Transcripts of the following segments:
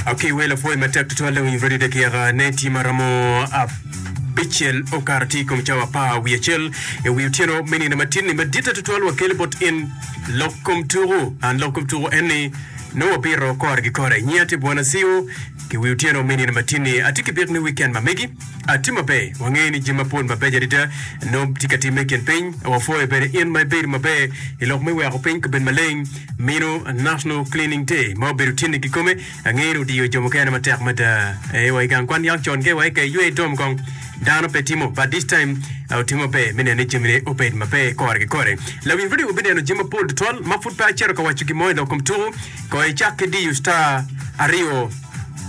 Akiwe lapwony matek tutwal Lewiny Freddy Dekiaka ne tye ma romo abicel okato tye i kom cawa apar wiye acel i wi otyeno me nino matinni maditte tutwal wakele bot in lok kom tuku an lok kom tuku en ni nongo wabito kore ki kore nyinga tye Bwana Siwo ki wi otyeno me nino matinni atye ki bik ni wikend ma megi atye maber wangeyo ni jami mapol mabeco adada nongo tye ka timme i kin piny wapwoyo bene in ma ibedo maber i lok me weko piny kabed maleng Mino National Cleaning Day ma obedo tyene kikome angeyo ni odiyo jo mukene matek mada. Ee, wa i gang kwan niang con kewa eka iywe itom kong. Dano pe timo, but this time ah, otimo maber me neno ni jamine obed maber kore ki kore. Lawiny redio wabineno jami mapol tutwal ma pud pe acito ka waco gin mo i lok kom tuku. Kono icak ki diyo star aryo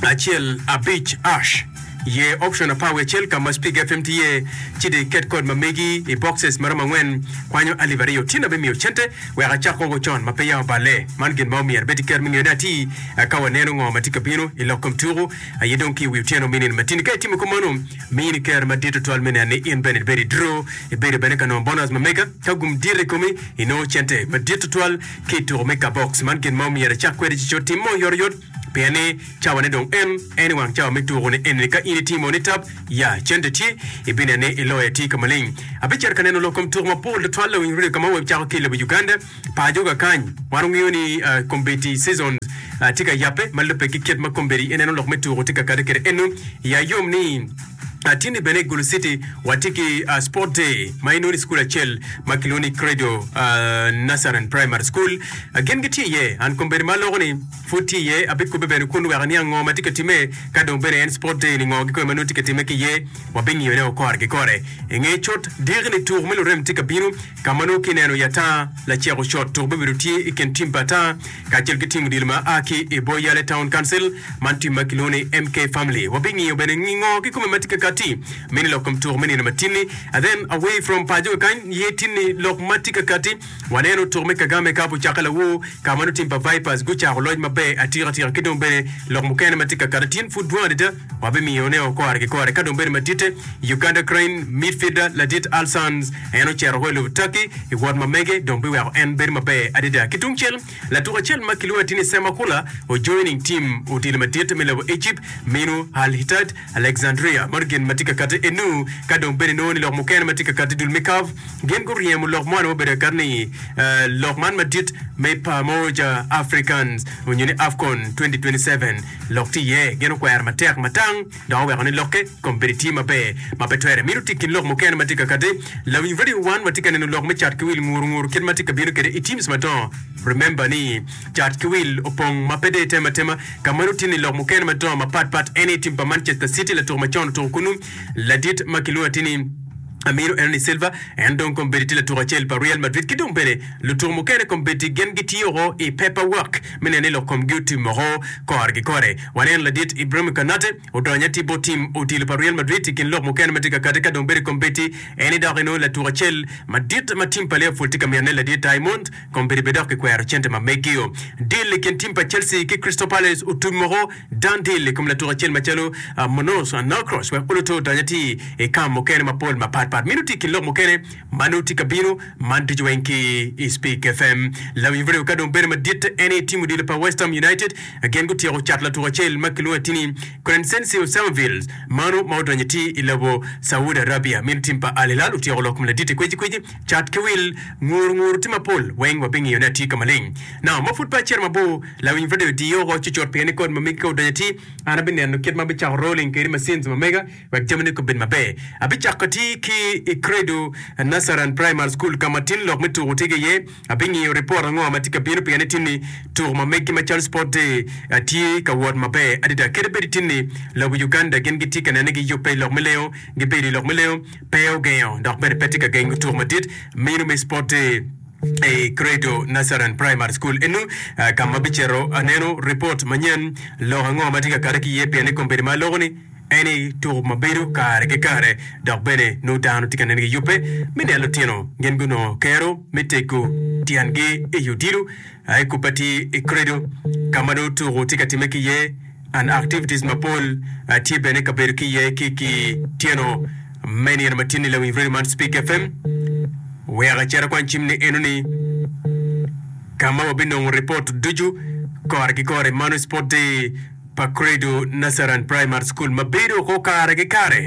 acel abic ash ye option apar wiye acel ka ma Speak FM tye iye, ci dong iket kod ma megi i boxes ma romo angwen kwanyo alip aryo. Tyen abimiyo cente Wek acak woko con ma peya oballe, man gin ma omyero bed iker me ngeyone atir. Ka waneno ngo ma tye ka bino i lok kom tuku, aye dong ki i wi otyeno mini matini. Ka itimo kop mano, miyo ni ker madit tutwal me neno ni in bene ibedo i dro, ibedo bene ka nongo bonus ma mega. Ka gum dit i komi, inongo cente madit tutwal ki i tuku me kabbox. Man gin ma omyero icak kwede ci cotim mo oyotoyot. Pien ni cawane dong en, en i wang cawa me tuku ni eni-ni. Ka in itimo ni tab, ya, cente tye, ibineno ni iloyo atir ka maleng. Abicito ka neno lok kom tuku mapol tutwal lawiny redio ka ma wecako ki i lobo Uganda. Pajoga kany, wan wangeyo ni kombeddi seasons tye ka yabbe ma lubbe ki kit ma kombeddi ineno lok me tuku tye ka kade kwede eno. Iya yom ni. Atini bene i Gulu City watye ki Sport Day ma inongo i cukul acel ma kilwongo ni Credo Nursery and Primary School. Gin gitye iye. An kombeddi ma aloko ni pud tye iye, abikobbe bene kun wek aniang ngo ma tye ka timme. Ka dong bene en Sport Day ni ngo kikome ma nongo tye ka timme ki iye, wabingiyo ne o kore ki kore. Inge cot diki ni tuku me lurem tye ka bino ka ma nongo kineno i ata laceko cot tuku bibedo tye i kin tim pa ata kacel ki tim odilo ma a ki i bor yalle Town Council, man tim ma kilwongo ni MK Family. Wabingiyo bene ngi ngo kikome ma tye ka kati me ni lok kom tuko me nino ma tin-ni. And then away from paco kakany ye tin ni lok ma tye ka kati waneno tuko me Kagame kapo ocakke lawoo ka ma nongo tim pa Vipers gucako loc maber atika tika ki dong bene lok mukene ma tye ka kati tyen pud dwong adada. Wabimiyo ne o kore ki kore. Ka dong bedo maditte, Uganda Cranes midfielder ladit Al Sanz en ocito woko i lobo Turkey i wot ma mege dong biweko en bedo maber adada. Ki tungcel, latuk acel ma kilwongo atir ni Sam Akula ojoin ing tim odilo madit me lobo Egypt minu Al Ittihad Alexandria ma gin ma tye ka kati enu. Ka dong bene inongo ni lok mukene ma tye ka kati i dul me CAF gin guryemo lok moni ma obedo kati ni lok man madit me Pamoja Africans nyo ni Afcon 2027. Lok tye iye gin okwero matek matang dok oweko ni lokke kombeddi tye maber ma pe twere mito tic ki lok mukene ma tye kakati. Lawiny radio wan watye ka neno lok me cat ki wil nguru nguru kit ma tye ka bino kwede i teams madongo. Remember ni cat ki wil opong ma pe dee tem atema ka ma nongo tye ni lok mukene madongo mapat pat en aye team pa Manchester City latuk ma con otuko kunu ladit ma kilwongo atir ni Amiro en ni Silva en dong kombeddi tye latuk acel pa Real Madrid ki dong bene lutuk mukene kombeddi gin gitye woko i paper work me neno ni lok komgi otim woko kore ki kore. Waneno ladit Ibrahim Konate odonyo atir bot tim odilo pa Real Madrid i kin lok mukene ma tye ka kati ka dong bedo i kom Betti. En ni dok inongo latuk acel madit ma tim pa Liverpool tye ka mine, ladit Diamond, kombeddi bene dok kikwero cente ma meggio. Dil i kin tim pa Chelsea ki Crystal Palace otum woko, dan dil i kom latuk acel macalo Munoz Anokros wek oloto odonyo atir i kam mukene mapol mapatpat. Meno tye i kin lok mukene Mano tye ka bino. Man ducu weng ki i Spik FM. Lam Ibreo ka dong bedo madit en aye tim odilo pa West Ham United. Gin gutyeko cato latuko acel ma kilwongo atini Crencencio Samuvills mano ma odonyo iti i lobo Saudi Arabia. Meno tim pa Al Hilal otyeko lok kom laditi kweci kweci. Cat ki wil, nguru nguru tye mapol weng wabingiyo ni atye ka maleng. Now ma pud pe acito mabor, Lawiny Radio diyo oko cucut pien ni kod ma megi ka odonyo iti, an abineno kit ma abicako rolling kede machines ma mega, wek jamine kobed maber. Abicako ati ki i Credo Nasaran Primary School ka ma tin lok me tuko tye ki iye. Abingiyo ripot ango ma tye ka bino pien ni tinni tuko ma megi macalo Sport Day tye ka wot maber adada. Kadi bed tinni lobo Uganda gin gitye ka nene giyubbe i lok me lengo, gibedo i lok me lengo pe ogengo dok bene pe tye ka gengo tuko madit meno me Sport Day i Credo Nasaran Primary School eno ka ma abicito aneno ripot manyen lok ango ma tye ka kati ki iye pien ni kombeddi ma aloko ni Eni tuko ma bedo kare ki kare dok bene nongo dano tye ka nen giyubbe me nen lutino gin gunongo kero me tego tyengi i odilo a i kubbe atir i Credo ka ma nongo tuko tye ka timme ki iye and activities mapol tye bene ka bedo ki iye ki ki tyeno me nino ma tin i lawiny radio man Speak FM wek ecit akwan cim ni enoni ka ma wabinongo report ducu kore ki kore mano sport day pa Credo Nazarene Primary School ma bedo oko kare ki kare.